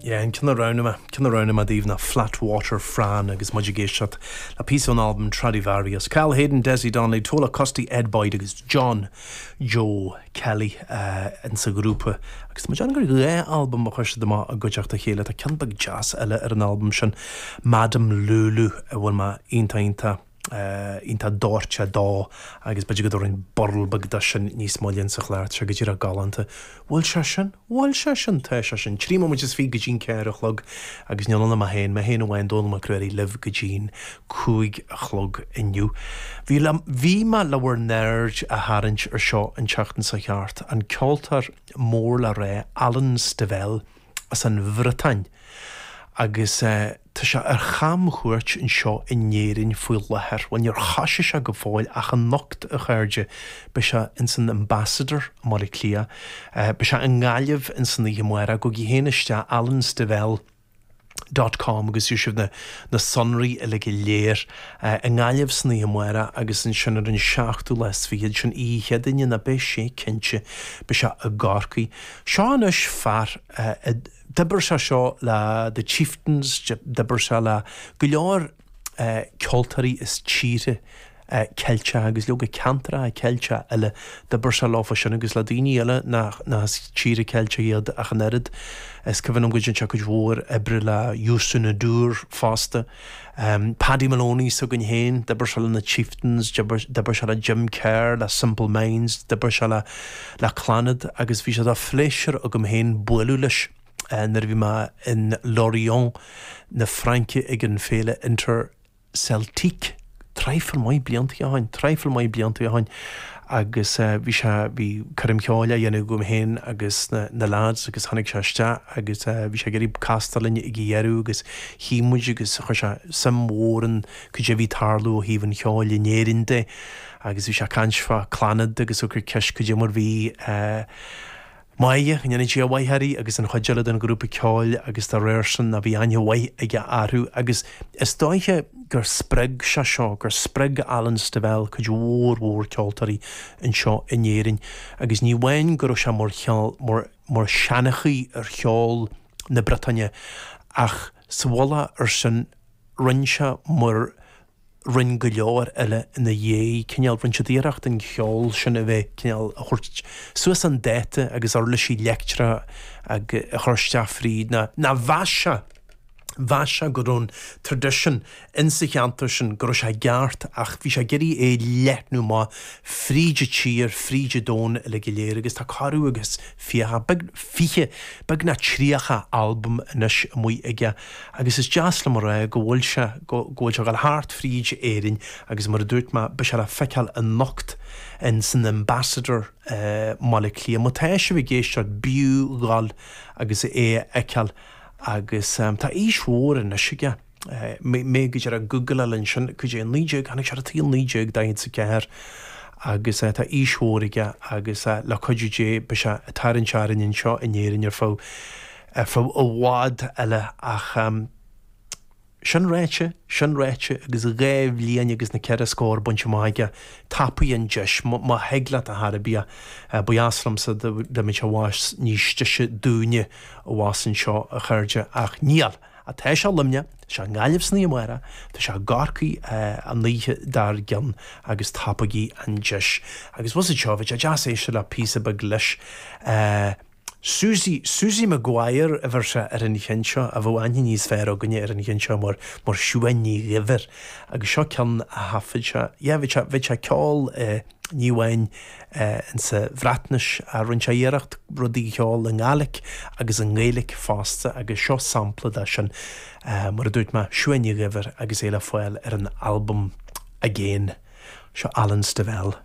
Yeah, an ceann a roghnaigh mé, ceann a roghnaigh mé daoibh ná Flatwater Fran, agus muid ag éisteacht le píosa ón albam Tradivarious. Cathal Hayden, Dezi Donnelly, Tola Custy, Ed Boyd agus John Joe Kelly ins an ghrúpa agus tá mé ag déanamh gur dhá albam a chuir siad amach i gcuideachta a chéile. Tá ceann beag deas eile ar an albam sin, Madame Lulu, a bhfuil mé iontach iontach. iontach doirte dó agus b'fhéidir go dtabharfainn burl beag dó sin níos moille sa chlár tá sé go díreach galánta bhuel sé sin bhuel sé sin tá sé sin trí móimint is fiche go dtí an ceathair a chlog agus níl ann ach mé féin mé féin amháin Dónall Mac Ruairí libh go dtí an cúig a chlog inniu bhí bhí mé le bhur n-aird a tharraingt air seo an tseachtain seo thart an ceoltóir mór le rá Alan Stivell as an Bhriotáin agus tá sé ar chamchuairt anseo in Éirinn faoi láthair. Bhuel, níor thoisigh sé go fóill ach anocht, a chairde, beidh sé ins an Ambassador i mBaile Átha Cliath, beidh sé i nGaillimh ins an oíche amárach, gabhaigí féin isteach, alanstivell dot com agus gheobhaidh sibh na sonraí uilig go léir. I nGaillimh san oíche amárach agus ansin ar an seachtú lá is fichead, sin oíche Chéadaoine, ná beidh sé cinnte, beidh sé i gCorcaigh. Seo anois fear a d'oibir sé seo le The Chieftains, d'oibir sé le go leor ceoltóirí as tíortha Ceilteacha agus leoga ceantracha Ceilteacha eile, d'oibir sé leofa sin agus le daoine eile nach as tíortha Ceilteacha iad ach an oiread. Is cuimhin liom go dtearn sé cuid mhór oibre le Youssou N'Dour fosta. Paddy Moloney s'againn féin, d'oibir sé le na Chieftains, d'oibir sé le Jim Kerr, le Simple Minds, d'oibir sé le le Clannad agus bhí sé de phléisiúr agam féin bualadh leis nuair a bhí mé in Lorient na Fraince ag an féile Interceltique. traidhfil maith blianta ó shoin, traidhfil maith blianta ó shoin agus eh bhí sé, bhí coirm cheoil á dhéanamh agam féin agus na, na lads agus tháinig sé isteach agus eh bhí sé ag iarraidh castáil linn ag a dheireadh agus shuigh muid agus chuir sé suim mhór in cad é a bhí ag tarlú ó thaobh an cheoil in Éirinn de agus bhí sé ag caint fá Clannad agus ag cur ceist cad é mar bhí eh Máire, go ndéana Dia a mhaith uirthi agus an chuid eile den ghrúpa ceoil agus dá réir sin a bhí aithne mhaith aige orthu agus is dóiche gur spreag sé seo, gur spreag Alan Stivell cuid mhór mhór ceoltóirí anseo in Éirinn agus ní amháin go raibh sé mar cheann, mar, mar sheanchaí ar cheol na Briotáine ach sa mhullach air sin roinn sé mar, roinn go leor eile ina dhiaidh, cineál, rinne siad iarracht an ceol sin a bheith, cineál, a thabhairt suas chun dáta agus uirlisí leictreacha a chur isteach fríd na, na, mheas sé, mheas sé go raibh an tradition in sa cheantar sin, go raibh sé i gceart ach bhí sé ag iarraidh é leathnú amach fríd an tír, fríd an domhan uilig go léir agus tá corradh agus fiche, beag, fiche, beagnach tríocha albam anois amuigh aige. Agus is deas liom a rá go bhfuil sé, go bhfuil sé ag dul thart fríd Éirinn agus mar a dúirt mé, beidh sé le feiceáil anocht in san Ambassador i mBaile Cliath. Má tá sibh ag éisteacht, b'fhiú dhul agus é a fheiceáil agus tá aois mhór anois aige, mé go díreach ag googláil ansin, cad é, naoi déag, tháinig sé ar an tsaol naoi déag daichead is a ceathair agus tá aois mhór aige agus le cuidiú Dé beidh sé ag tarraingt orainn anseo in Éirinn ar feadh ar feadh i bhfad eile ach sin ráite, sin ráite agus dhá bhliain agus na ceithre scór bainte amach aige, tapaigh an deis, má thig leat ar chor ar bith, ba dheas liomsa dá mbeadh sé abhus níos deise dúinne abhus anseo a chairde ach níl, tá sé i Luimneach, tá sé i nGaillimh san oíche amárach, tá sé i gCorcaigh an oíche dár gcionn agus tapaigí an deis. Agus fhios agat seo, bheadh sé deas éisteacht le píosa beag leis. Suzy, Suzy Maguire a bheir sé ar an cheann seo, a bheadh aithne níos fearr againne ar an cheann seo mar, mar Siuán Ní Dhuibhir agus seo ceann a thaifead sé, yeah bheadh sé, bheadh sé ag ceol eh ní amháin eh in sa Bhreatnais ach rinne sé iarracht rudaí a cheol i nGàidhlig agus i nGaeilic fosta agus seo sampla de sin eh mar a dúirt mé, Siuán Ní Dhuibhir agus é le fáil ar an albam Again. Seo Alan Stivell.